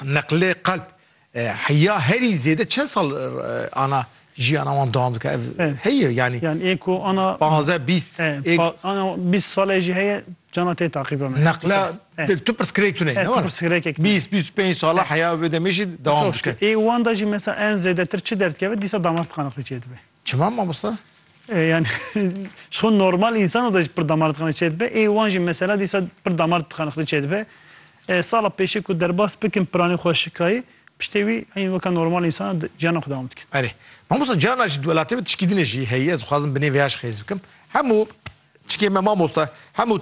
Neqlê qelb heya herî zêde çend sal ana jiyana wan dewam dike ev heye yanî. Yan ê ku ana panzdeh bîst ana bîst sale jî heye cana tê taqîbe me. Neqle tu pirsgirêk tune ne were. Pirsgirêkek bîst bîst û pênc sala heya wê demê jî dewam dike. Ê wan de jî mesela en zêdetir çi derdikeve dîsa damar tıkanıklığı çêdibe. Çima mamosta? Yani ji xwe normal însan de jî pir damar dixane çê dibe. Ê wan jî mesela dîsa pir damar dixane xwe çê dibe. Sala pêşê ku derbas bikin piranê xwe şikayê piştê wî eyn weke normal însan ciyana xwe dewam dikin. Erê. Mamosta ciyana ji welatê me tişkî din jî heye ez dixwazim binê vê ya jî xêz bikim. Hemû çikê me mamosta hemû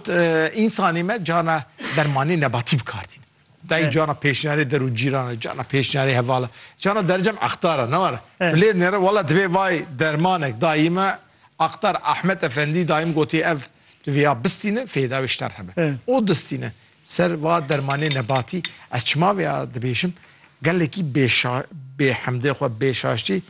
însanê me ciyana dermanê nebatî bikar tînin. Dayî cana pêşniyarê der û cîran e, cana pêşniyarê heval e. Cana dercem aqtar e, ne were. Evet. Bilêr nêre wela divê vay dermanek dayî me aqtar Ahmet Efendî dayî min gotî ev tu vê ya bistîne fêda wê ji te re hebe. Evet. O distîne ser va dermanê nebatî ez çima vê ya dibêjim gelekî bêşa bêhemdê xwe bêşaştî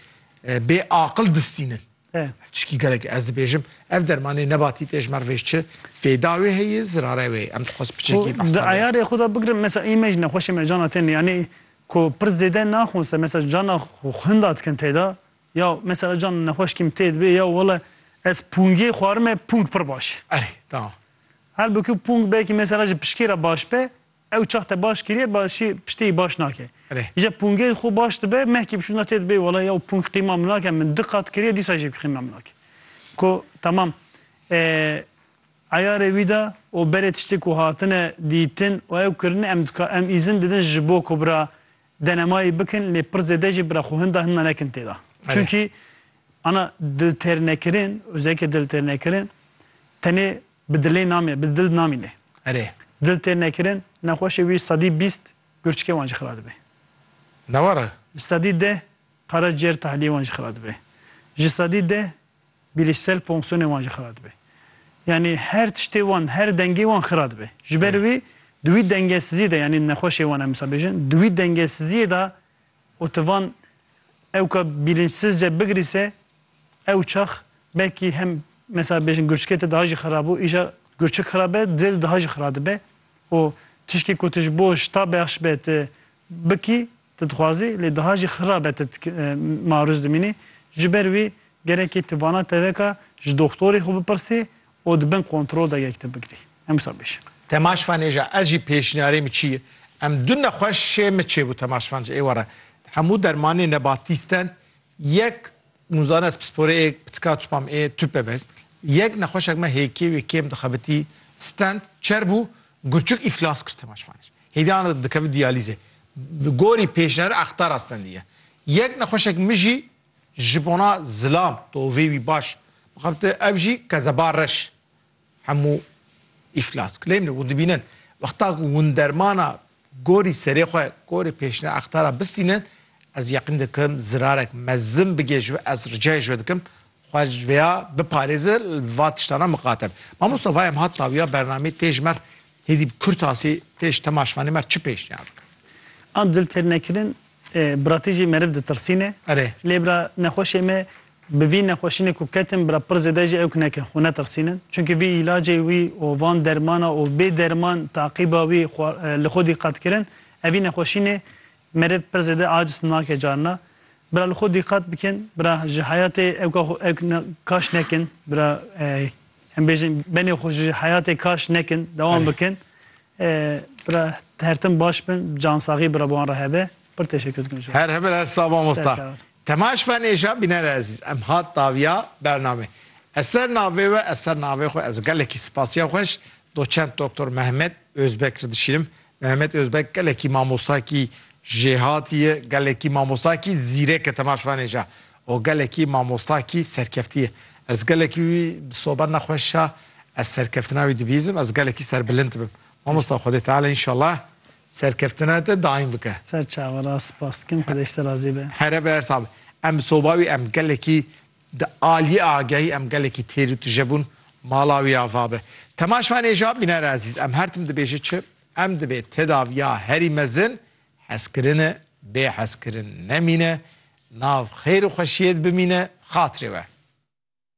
e, bêaqil distînin. e. Tişkî gelek ez dibêjim ev dermanê nebatî tê ji mer vê çi fêda wê heye zirare wê em dixwest piçekî behsa. Di eyarê xwe de bigirim mesa ê me ji nexweşê me cana tên yanî ku pir zêde naxwin ser mesa cana xwinda dikin têda ya mesa ez can nexweş kîm tê dibê ya wele ez pûngê xwarime pûng pir baş e. Erê tamam. Halbukî pûng belkî mesela ji pişkê re baş be Ew çax te baş kiriye başî piştî baş nake. Îja pûngê xwe baş dibe mehkî bişûna tê dibê wela ya pûng qîma min nake min di qat kiriye dîsa jî qîma min nake. Ko tamam eyarê wî da û berê tiştê ku hatine dîtin û ew kirine em dikar em îzin didin ji bo ku bira denemayî bikin lê pir zêde jî bira xwe hinda hinda nekin tê da. Çunkî ana diltêrnekirin, ozeke diltêrnekirin tenê Bi dilê namî, bi dil namîne. Erê. Dil têr nekirin, nexweşê wî sedî bîst gurçikê wan jî xira dibe. Ne were? Ji sedî deh qeraciyêr tahliyê wan jî xira dibe. Ji sedî deh bîlîşsel fonksiyonê wan jî xira dibe. Yanî her tiştê wan, her dengê wan xira dibe. Ji ber wî di wî dengesiziyê de yanî nexweşê wan em dibêjin, di wî dengesiziyê de Û tu van ewka bîlinçsizce bigirî se ew çax belkî hem mesela bêjin gurçikê te daha jî xirab bû îja gurçik xirab be dilê de daha jî xirab dibe û tiştê ku tu ji bo şita bexş be tu bikî tu dixwazî lê daha jî xirab be tu marûz dimînî ji ber wî gerekê tu vana teveka ji doxtorê xwe bipirsî û di bin kontrol de yek te bigirî. Em wisa bêjin. Temaşvan ê ja ez jî pêşniyarê min çi ye? Em du nexweşê min çêbû Temaşvan ji êware hemû dermanê nebatî stend yek nûzane ez pisporê ê pitika tûpa min ê tûpe be yek nexweşek me hêkê wê kêm dixebitî stend çer bû gurçik îflas kir Temaşvan ê hêdî ana dikevin diyalîzê bi gorî pêşniyara extara stendî ye yek nexweşek min jî Ji bona zilam tovê wî baş bixebite ev jî qezeba reş hemû îflas kilê min e. Hûn dibînin wexta ku hûn dermana gorî serê xwe gorî pêşine extara bistînin ez yeqîn dikim zirarek mezin bigê ji we ez ricayê ji we dikim xwe ji vêya biparêze li va tiştana miqate be. Mamosta va em hat tawiya bernameyê tê ji mer Hêdî bi kurtasî tê ji temaşvanê me re çi pêşniyar bikin? An dil têr nekirin biratî jî meriv ditilsîne. Erê. Lê bira nexweşê me bi vî nexweşînê ku ketin bira pir zêde jî ewk nekin, xwe netilsînin. Çimkî vî îlacê wî û van dermana û bê derman taqîba wî xwe li xwe dîqet kirin, ev vî nexweşînê meriv pir zêde aciz nake carina. Bira li xwe dîqet bikin, bira ji heyatê ewka xwe ewk kaş nekin, bira Em bêjin benê xwe ji heyatê kaş nekin, dewam bikin. Bira hertim baş bin, cansaxî bira wan re hebe. Pir teşekkür dikim ji. Her hemir her sava mosta. Temaş ben êja bînere ezîz. Em hat daviya bername. Ez ser navê we ez ser navê xwe ez gelekî spasiya xweş doçent doktor Mehmet Özbek ji dişînim. Mehmet Özbek gelekî mamostakî jêhatî ye, gelekî mamostakî zîrek e temaş ben êja. O gelekî mamosta kî serkeftî ye. Ez gelekî wî sober ne xweş a, ez serkeftina wî dibîzim, ez gelekî serbilind bim. Mamosta Xwedê Teala înşallah serkeftina te daîm bike. Ser çawa ra spas dikim, Xwedê ji te razî be. Here bi her sax be. Em soba wî em gelekî di aliyê agehî em gelekî têr û tije bûn, mala wî ava be. Temaşvanê Jabîner Ezîz em her tim dibêje çi? Em dibê tedaviya herî mezin Hezkirine, bê hezkirin nemîne, nav xêr û xweşiyê di bimîne, xatirê we.